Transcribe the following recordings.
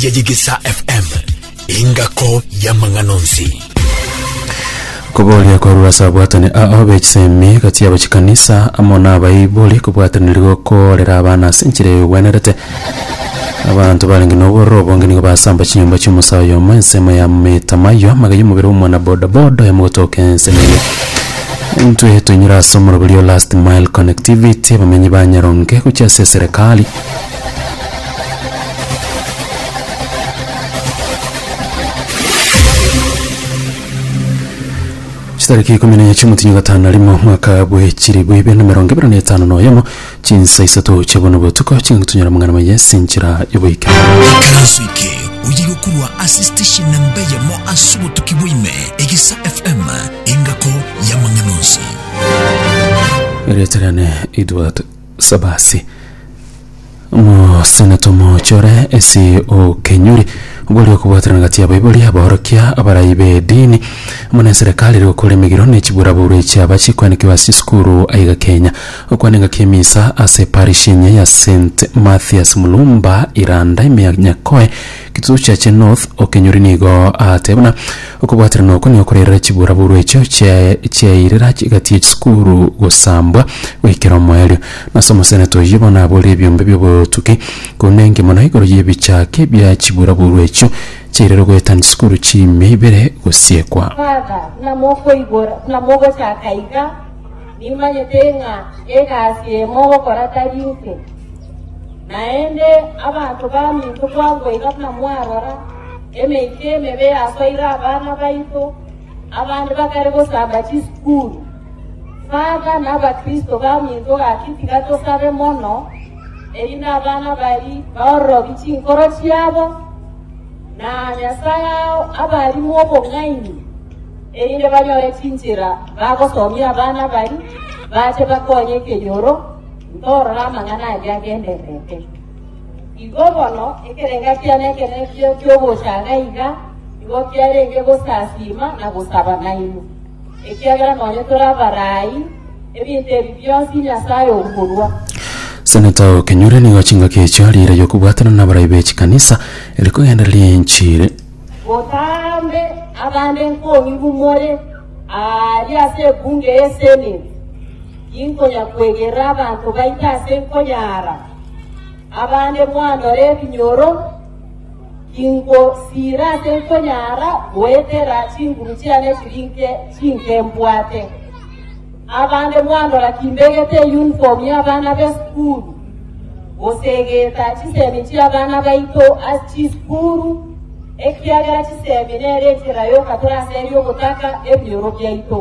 ya Yegesa FM, engako y'amang'ana onsi. Koboria korwa ase abwatani ao b'echisemi gati yabo chikanisa amo n'abaibori kobwataniri gokoorera abana ase enchera eyobwenerete. Abanto barenge n'obororo obonge nigo basamba chinyomba chi'omosae oyomo ensemo ya metamayo maga y'omobere omwana bodaboda oyomo gotoka ensemo eye. Intwe toinyore ase omoroberi o Last Mile Connectivity abamenyi ba Nyaronge gochia ase eserekari Chitariki ikumi na chiomotinyi gatano na rimo mwaka bwe chiribu ibere na mirongo ibere na etano na oyomo chinsa isato chia bono botuko ching'akutunyara mong'ana maye ase enchera y'oboike Ekarasu eke oye gokurwa ase station namba eyemo ase obotuki bwaime egisa fm engako y'amang'ana onsi erieta riane Edward Sabasi. Omoseneta omooche ore ase okenyori gwari okobwaterana gati y'abaibori, abaorokia, abarai b'edini, amo na eserekari ere gokora emegiro na echiburaburu echi aba chikoanekigwa ase chisukuru aiga Kenya. Okwana engaki y'emisa ase parish engiya ya St. Mathias Mulumba, Iranda, Ime ya Nyakoe, Gituo kia Che North okenyori nigo agateba buna okobwaterana oko nigo korairera chiburaburu echio chiairera gati ye chisukuru gosambwa goikera omoerio. Nase omosenete oyio bono abore ebiombe biobotuki korende enke mono igoro yebichake bia chiburaburu echio chiairera ogoetania chisukuru chimia ibere gosiekwa. Father, buna mokoigora, buna mogochaka iga, nimanyete ng'a egasi eye mogokora tari inse. Naende abanto baminto bwango iga buna mwarora, emeika emebe yasoire abana baito, abande bakare gosamba chisukuru. Father na Abakristo baminto gaki tiga tosabe mono, erinde abana baria baororobi chinkoro chiabo, na Nyasae ao abarimo obong'aini, erinde banyore chinchera bagosomia abana baria, bache bakonye ekenyoro, Ndorora amang'ana ayio agendererete. Igo bono ekerenga kiane ekeredio ki'ogochaga iga nigo kiarenge gosasiima na gosaba nainwe, ekiagera nonye tore abarai, ebinto ebi bionsi Nyasae okorua. Seneta o Kenyuri nigo chingaki echio ariiraiyo kobwatana n'abarai be chikanisa ere kogendereria enchiri. Botambe abande nkong'ibu more aaria ase ebunge y'eseneti. Inkonya kwegerera abanto baito ase nkonya ara, abande mwandora ebinyoro, ingo siira ase nkonya ara goetera chinguru chiane chiri nke chinke mbwate. Abande mwandora kimbegete eyunifomu y'abana b'esukuru, gose egeeta chisemi chi'abana baito ase chisukuru, ekiagera chisemi nere enchera y'oka tore ase eria ogotaka ebinyoro biaito.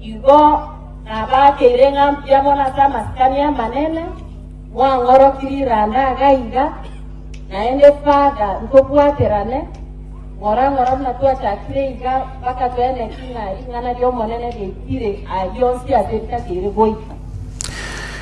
Igo nabakeire ng'a mbuya mono ase amasikani amanene mwang'oroki riranda iga iga, naende father ntobwaterane ng'ora ng'ora buna twachakire iga mpaka twene ki ng'a ring'ana ri'Omonene riaikire aria onsi ase ritakeire goika.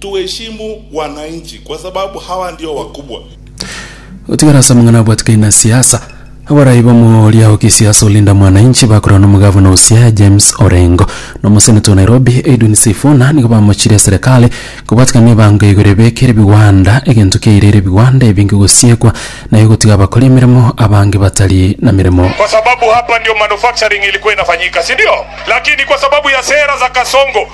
Tuheshimu wananchi kwa sababu hawa ndio wakubwa. Gotigara ase amang'ana abwatikani na siasa, abarai b'omoooria o kisiasa o Linda Mwananchi bakorana n'omogavana o Siaya James Orengo na omoseneta o Nairobi Edwin Sifuna nigo bamochirie eserekari kobwatikana nebango igoro ebeke ere bigwanda egento kiaire ere bigwanda ebinge gosiekwa naye gotiga abakori emeremo abange batari na meremo. kwa sababu hapa ndio manufacturing ilikuwa inafanyika, si ndio? Lakini kwa sababu ya sera za Kasongo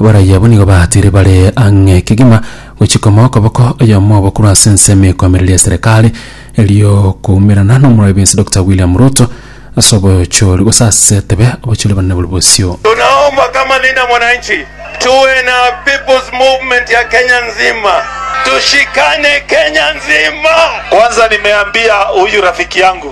Abaraiyo abwo nigo baatiire bare ang'e kegima gochia komoa okoboko oyomo obo korwa ase ensemo ekoamereria ya Serekari erio koumerana n'omorwari bwensi Dokita William Ruto ase obochori gose ase tebe obochori banene bore bosio. Tunaomba kama Linda Mwananchi tuwe na people's movement ya Kenya nzima, tushikane Kenya nzima. Kwanza nimeambia huyu rafiki yangu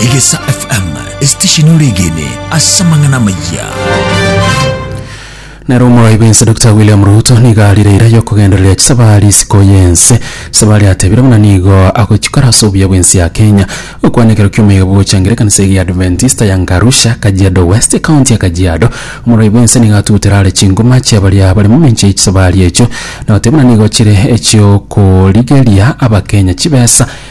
Egesa FM, esitesheni ore egene ase amang'ana amaya. nero omoroibi ense dr william ruto nigo arire eira yokogendereria chisabari isiko yense chisabari atebire buna nigo agochikora ase obuya bwense ya kenya okwana ekero kiomaiga bogochangira ekanisa eye ya adventista ya ngarusha kajiado west ekaunti ya kajiado omoroibi ense nigo atutera are chingoma chia baria bare momincha y'echisabari echo nagoteba buna nigo chire echiokorigeria abakenya chibesa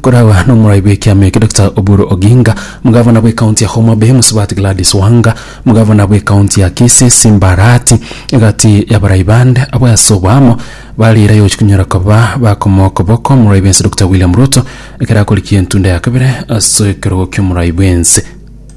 Koragwa n'omorai bw'ekiama eke Doctor Oburu Oginga, Omogavana bw'ekaunti ya Homa Bay Mosubati Gladys Wanga, Omogavana bw'ekaunti ya Kisii Simba Arati, egati y'abarai bande abwo ase oboamo bare ira yochia konyora koba bakomoa okoboko omorai bw'ense Doctor William Ruto ekero akorikia entunda ya kabere ase ekerogo ki'omorai bw'ense.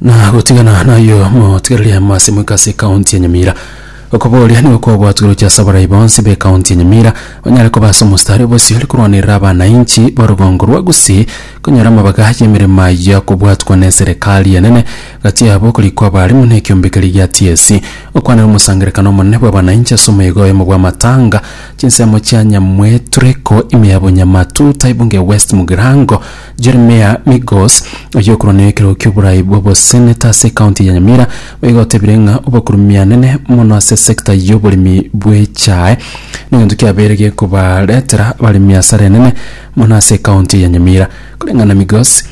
na gotigana nayo motigereria amase moika ase ekaunti ya nyamira okoboria nigo kwabwatwe oroche ase abarai bonsi ba ekaunti ya nyamira banyare koba ase omostari bosio ore korwanerera abanainchi ba obogongo rwa gusii konyora amabaga ya emeremo ayio akobwatwa na eserekari enene gati yabo okorikwa abarimu na ekiombekeri gia tsc okwana na omosangerekano omonene bwa abanainchi ase omoegoyomo bwa amatanga Chinsemo chia Nyamwetureko ime ya Bonyamatu, Taibunge West Mugirango, Jeremiah Migos, oyio okorwania ekero ki'oborai bw'oboseneta ase ekaunti ya Nyamira, boigo otebire ng'a obokurumianene mono ase sector y'oboremi bw'echae negento kiabeire gekobaretera abaremi asara enene mono ase ekaunti ya Nyamira. Koreng'ana Migos,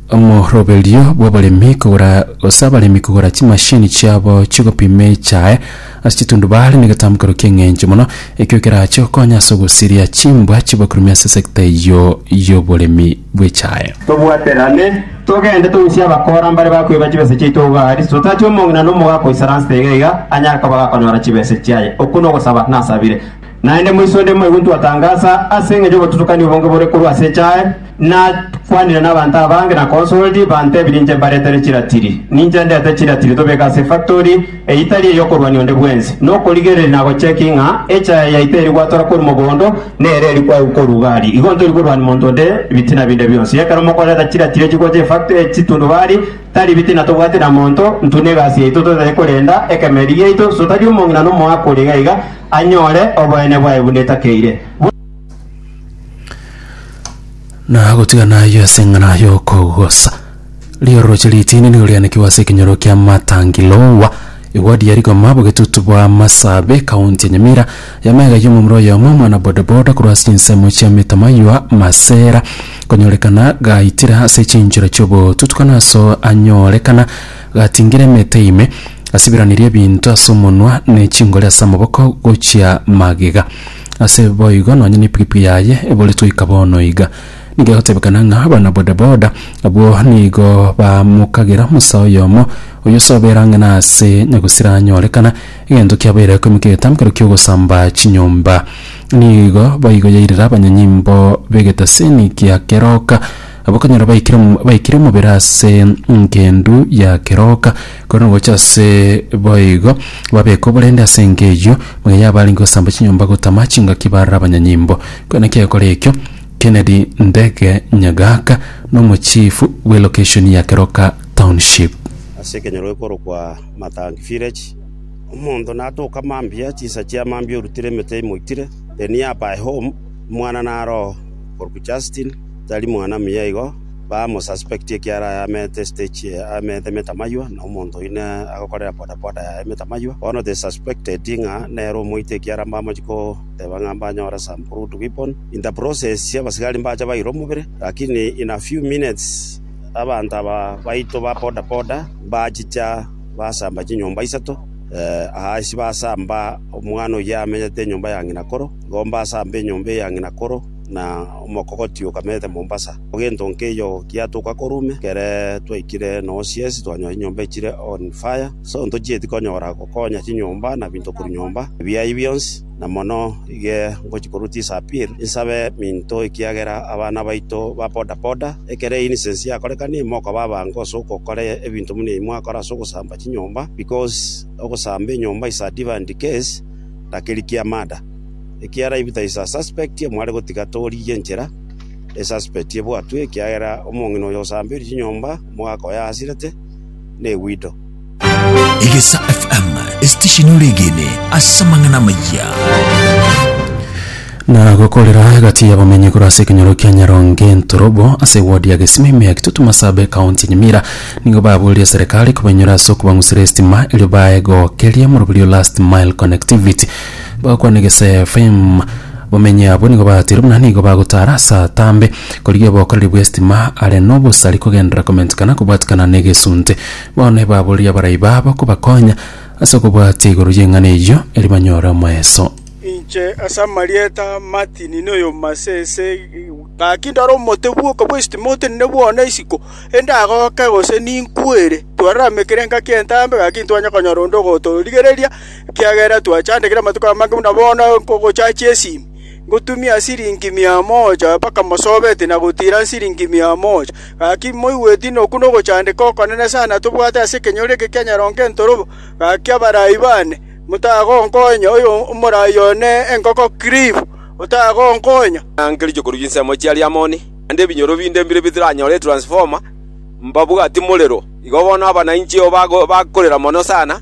Omoroberio bw'abaremi kogora gose abaremi kogora chimashini chiabo chigopima echae ase chitundubare negetambe korwa ki'eng'encho mono ekio kerache gokonya ase ogosiria chimbwa chibakurumi ase sector eyio y'oboremi bw'echae. Tobwaterane, togende togusie abakora mbare bakoiba chibesa chiaito iga aria, totache omong'ina na omogaaka oisara nste iga iga anyare koba gakonyora chibesa chiaye. Okwo nogosaba nasabire. Naende moiso onde moigwe ntwatangasa ase engencho y'obotutukani obonge bore korwa ase echae, nakwanire nabanto abange na consoled, bantebirie inche mbaretere chiratiri. Ninche ndete chiratiri tobeke ase efactori eye itari ey'okorwania onde bwensi, nokorigereria na gochecki ng'a echae yaito eri gwatora korwa mogondo nere eri kwaigwa korwa igari. Igo ntori korwania monto onde bitina binde bionsi. Ekero mokoreta chiratiri echi gocha efactori ya chitundubari, tari bitina tobwate na monto, ntwe negasi yaito totache korenda ekemeeri giaito, sotari omong'ina nomoakori iga iga, anyore oboene bwaye buna etakeire, buna. Na gotigana ayio ase eng'ana y'okogosa, ri'orooche ritini nigo rianekigwe ase ekenyoro kia Matangilowa, ewadi ya Rigoma, bogetutu bwa Masabe, Kaunti ya Nyamira. Y'amaiga ayio omomura oyomo, omwana bodaboda, korwa ase chinsemo chia Mitamaywa, Masera, konyorekana gaitire ase chinchera chi'obotutukana aso anyorekana Gatingire emeete ime, asibiranirie ebinto ase omonwa, ne chingori ase amaboko gochia magega. Ase boigo nonya nepikipiki yaye ebore toika bono iga. Nigo egotebekana ng'a abana bodaboda abwo nigo bamokagera omosae oyomo oyio ase obeera ang'e na ase nyagusira anyorekana, egento kiabeire ekomeka egetamkero ki'ogosamba chinyomba. Nigo boigo yairera abanyanyimbo b'egetasini gia keroka. Abwo okonyora baikire baikire omobere ase engendu ya keroka, korende gocha ase boigo babeka oborende ase enka eyio, muna yabo arenge gosamba chinyomba gotama chingaki bare abanyanyimbo. Kona kiagokora ekio, Kennedy Ndege Nyagaka nomochifu bwe location ya Keroka Township. Ase ekenyoro gekorokwa Matangi Village, omonto natoka mambia, chinsa chia mambia orutire emete imoitire, the nearby home, omwana naro oo korokwa Justin, Tari mwana muya igo, bamo suspect ekiara aye ameete stage eye ameete metamaywa na omonto oyio ne agokorera bodaboda yaye metamaywa. Bono they suspected ng'a nere omoite ekiara mbamochi koteba ng'a mbanyore some crude weapon. In the process abasigari mbacha baira omobere lakini in a few minutes abanto aba baito ba bodaboda mbachicha basamba chinyomba isato aa ase basamba omwana oyio amenyete enyomba ya ng'ina koro igo mbasamba enyomba eye ya ng'ina koro. na omokogoti okamete Mombasa. Gento nkeiyo giatoka korume, ekero twaikire noo siesi twanyora chinyomba chire on fire. So ntochieti konyora gokonya chinyomba na binto korwa nyomba ebiayi bionsi, na mono iga ngochi korwa tisa appeal insabe minto ekiagera abana baito ba boda boda ekero innocence yakorekane mokaba abange ase ogokora ebinto buna ebi mwakora ase ogosamba chinyomba because ogosamba enyomba is a different case na keri kia murder. Ekiagera if there is a suspect mware gotiga torigie enchera e suspect ebwatwe ekiagera omong'ina oyo osambeire chinyomba omogaka oyo aasirete ne wido. Egesa FM, esitesheni ore egene ase amang'ana amaya. na gokorera gati y'abamenyi korwa ase ekenyoro kia nyaronge ntorobo ase wodi ya gesima ime ya kitutu masabe ekaunti ya nyamira nigo baburerie serikali kobainyoria ase okobang'usera esitima erio bae gokeria moroberi o last mile connectivity Bagokwana Geseefaimu, bamenye abwo nigo batiire buna nigo bagotaara ase atambe, korigia obokoreri bw'estima are nobosari kogenderera komentikana kobwatikana negesunte. Bono ebaborerie abarai babo kobakonya ase okobwatia igoro y'eng'ana eyio, erio banyore omoeso. Inche ase amarieta a Martin Niomasese, gaki ndore omote bw'oka bw'estima otenene bwone isiko, endagoke gose ninkwere, twararame kera engaki y'entambe, gaki ntibanye konyora onde ogotorigereria, Ekiagera twachandekire amatuko amange buna bono nkogochacha esimi, ngotumia siringi mia moja mpaka mosobeti na gotiira siringi mia moja. Gaki moigweti ng'a oku nogochandeka okonene sana tobwate ase ekenyoro eke kia nyarongo entorobo. Gaki abarai baane, motagonkonya, oyo omorai one enkoko Cliff, otagonkonya. Nange richokoru chinsemo chia Liamoni, naende ebinyoro binde mbire bitaranyore etransfoma, mbabwati morero. Igo bono abana inche oo bakorera mono sana.